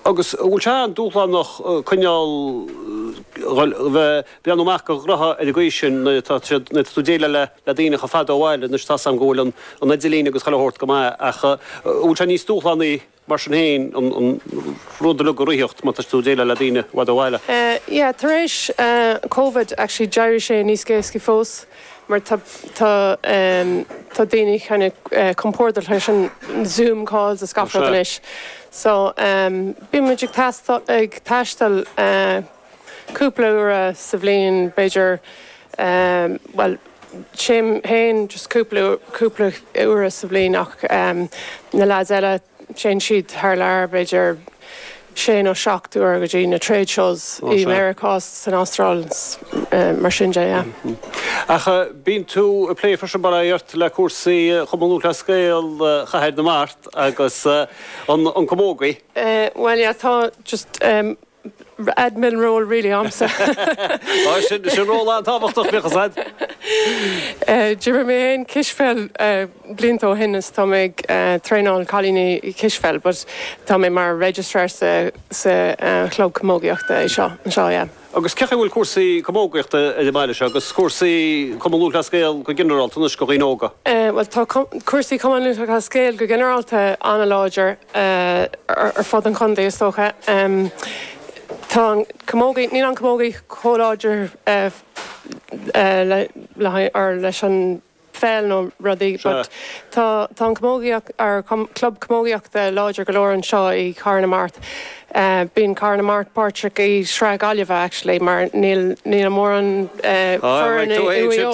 Agus an bhfuil sé an-dúshlánach coinneáil, bhuel, bheith, breathnú amach do ghnótha ar an gcaoi sin nuair atá tú, nuair atá tú ag déileáil le, le daoine chomh fada ó bhaile, anois tá 's agam go bhfuil an, an idirlíon agus chuile shórt go maith ach an bhfuil sé níos dúshlánaí mar sin féin an, an rud uilig a reáchtáil mar tá tú ag déileáil le daoine i bhfad ó bhaile? Yeah, tar éis Covid actually d'éirigh sé níos éascaí fós. mar tá tá daoine kinda compordach leis an zoom calls is gach rud anois so bíonn muid ag teastáil ag taisteal cúpla uair sa bhliain b'fhéidir bhuel téim féin just cúpla cúpla uair sa bhliain ach na lads eile Téann siad thar lear, b'fhéidir sé nó seacht uair go dtí na trade shows i Meiriceá, san Astráil, mar sin de, yeah. Ach bíonn tú ag plé freisin, más buan mo chuimhne, le cúrsaí Chumann Lúthchleas Gael Chathair na Mart agus an camógaí. Bhuel yeah, tá just. Admin role really Ó sin sin ról an-tábhachtach bíodh a fhios a'd. D'imir mé féin cispheil blianta ó shin is tá mé ag traenáil cailíní cispheil but tá mé mar registrar sa sa chlub camógaíochta anseo yeah. Agus cé chaoi a bhfuil cúrsaí camógaíochta ar an mbaile seo agus cúrsaí Cumann Lúthchleas Gael go ginearálta anois do dhaoine óga? Bhuel tá cúrsaí Cumann Lúthchleas Gael go ginearálta an-láidir ar fud an chontae is dócha. Tá an camógaí, níl an camógaí chomh láidir le leis an pheil nó rudaí but tá tá an camógaíocht or club camógaíochta láidir go leor anseo i Cathair na Mart. Bíonn Cathair na Mart páirteach i Sraith Gaillimhe actually mar níl níl mórán foireann i Maigh Eo.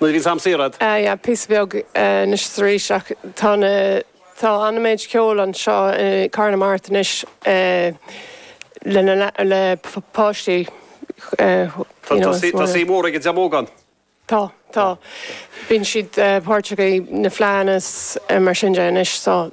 Nuair a bhíonns am saor a'd. Ah yeah, píosa beag anois is arís ach tá na, tá an-méid ceoil anseo i Cathair na Mart anois le na, le páistí you know is mar. Tá suim mhór ag an dream óg ann. Tá, tá. Bíonn siad páirteach i na fleadhanna is mar sin de anois so.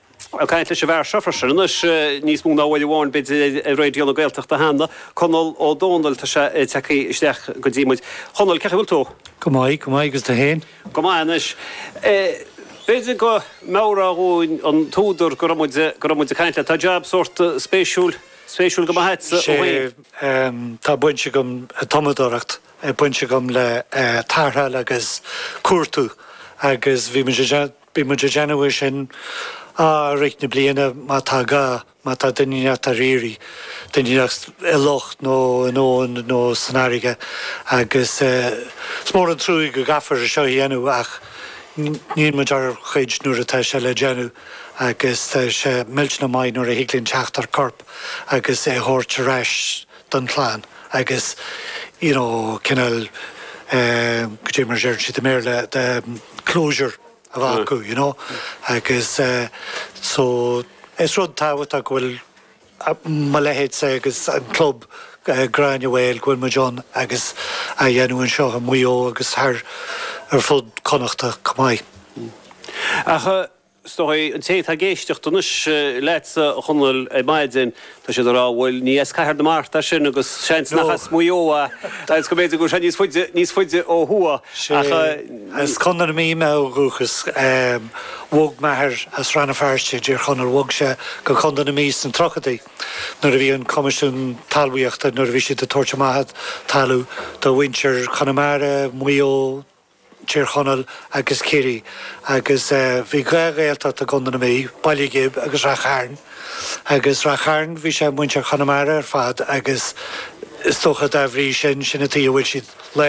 Ag caint leis an bhfear seo freisin anois, níos mó ná uair amháin b'fhéidir ar Raidio na Gaeltachta cheana, Conall Ó Domhnaill, tá sé ag teacht isteach go dtí muid. Chonall, cé chaoi bhfuil tú? Go maith, go maith, agus tú fhéin? Go maith anois. B'fhéidir go meabhrófá dhúinn an t-údar go raibh muid, go raibh muid ag caint leat. Tá jab sórt spéisiúil, spéisiúil go maith agatsa ó shoin. Sé, tá baint agam, tumadóireacht, baint agam le tarrtháil agus cuartú agus bhí muid ag déanamh, Bíonn muid ag déanamh é sin i rith na bliana má tá gá, má tá duine inteacht ar iarraidh, duine inteacht i loch nó in abhainn nó san fharraige agus is mór an truaigh go gcaithfear é seo a dhéanamh ach níonn muid ár gcuid nuair atá sé le déanamh agus tá sé millteanach maith nuair a thig linn teacht ar chorp agus é a thabhairt ar ais don chlann agus you know cineál eh go dtí mar a deireann siad i mBéarla de closure a bheith acu you know agus eh so is rud tábhachtach go bhfuil mo leithéidse agus an club eh Gráinne Mhaol go bhfuil muid ann agus á dhéanamh anseo i Maigh Eo agus thar ar fud Connachta chomh maith. Ach eh Is dóigh, an té atá ag éisteacht anois leatsa, a Chonaill, ar maidin, tá siad ag rá, bhuel, ní as Cathair na Mart é sin agus seans nach as Maigh Eo é agus go mb'fhéidir go bhfuil sé níos faide, níos faide ó thuaidh. Ach sea. As Contae na Mí mé ó dhúchas. Bhog m'athair as Rann na Feirste i dTír Chonaill, bhog sé go Contae na Mí sna tríochaidí nuair a bhí an Coimisiún Talmhaíochta, nuair a bhí siad ag tabhairt amach talamh do mhuintir Chonamara, Mhaigh Eo, Tír Chonaill agus Ciarraí agus bhí dhá Ghaeltacht i gContae na Mí, Baile Ghib agus Rath Chairn. Agus Rath Chairn bhí sé muintir Chonamara ar fad agus is dócha dá bhrí sin, sin an tuighe a bhfuil siad.